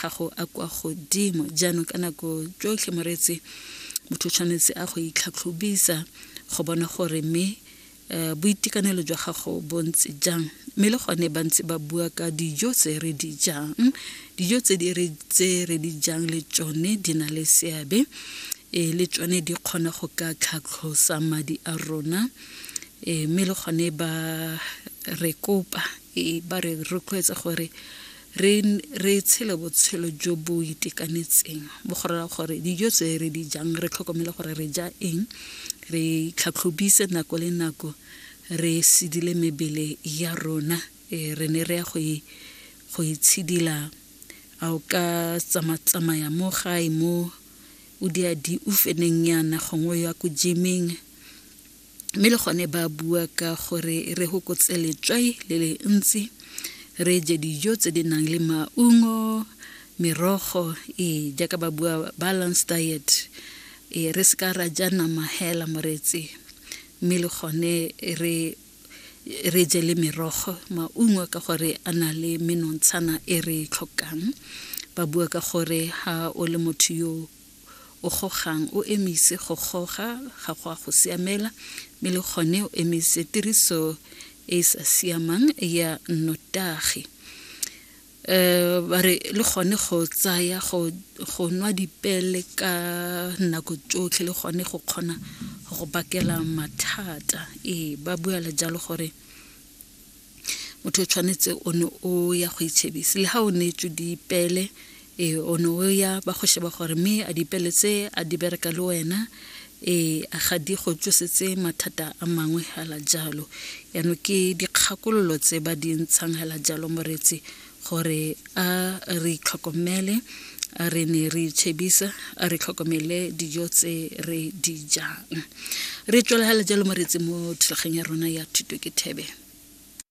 gago a kwa godimo jaanong ka nako tsotlhe moreetsi motho o tshwanetse a go itlhatlhobisa go bona gore mme um boitekanelo jwa gago bo ntse jang mme le gone ba ntse ba bua ka dijo tse re di jang dijo tse re di jang le tsone di na le seabe e le tsone di kgona go ka tlhatlhosa madi a rona um mme le gone ba re kopa e ba re rotloetsa gore re re tshele botshelo jo bo itekanetseng bo gorela gore dijo tse re di jang re tlhokomele gore re ja eng re tlhatlhobise nako le nako re sedile mebele ya rona e re ne re ya go e go itshidila a o ka tsamatsamaya mo gae mo o diadi o feneng yana gongwe ya ko gymeng mme le gone ba bua ka gore re gokotse letswai le le ntsi re je dijo tse di nang le maungo merogo e jaaka ba bua balance diet e re se ka ra ja nama hela moreetsi mme le gone re re je le merogo maungo ka gore a na le menontshana e re e tlhokang ba bua ka gore ha o le motho yo o gogang o emise go goga ga go a go siamela mme le gone o emise tiriso e e sa siamang ya nnotagi um ba re le gone go tsaya go nwa dipele ka nako tsotlhe le gone go kgona go bakela mathata ee ba buela jalo gore motho o tshwanetse o ne o ya go itšhebise le ga o neetswe dipeele ee o ne o ya ba go sheba gore mme a dipeele tse a di bereka le wena ee a ga di go tsosetse mathata a mangwe fela jalo yaanong ke dikgakololo tse ba di ntshang fela jalo moreetsi gore a re itlhokomele a re ne re itshebisa a re tlhokomele dijo tse re di jang re tswelagale jalo moretsi mo thulaganyang ya rona ya thuto ke thebe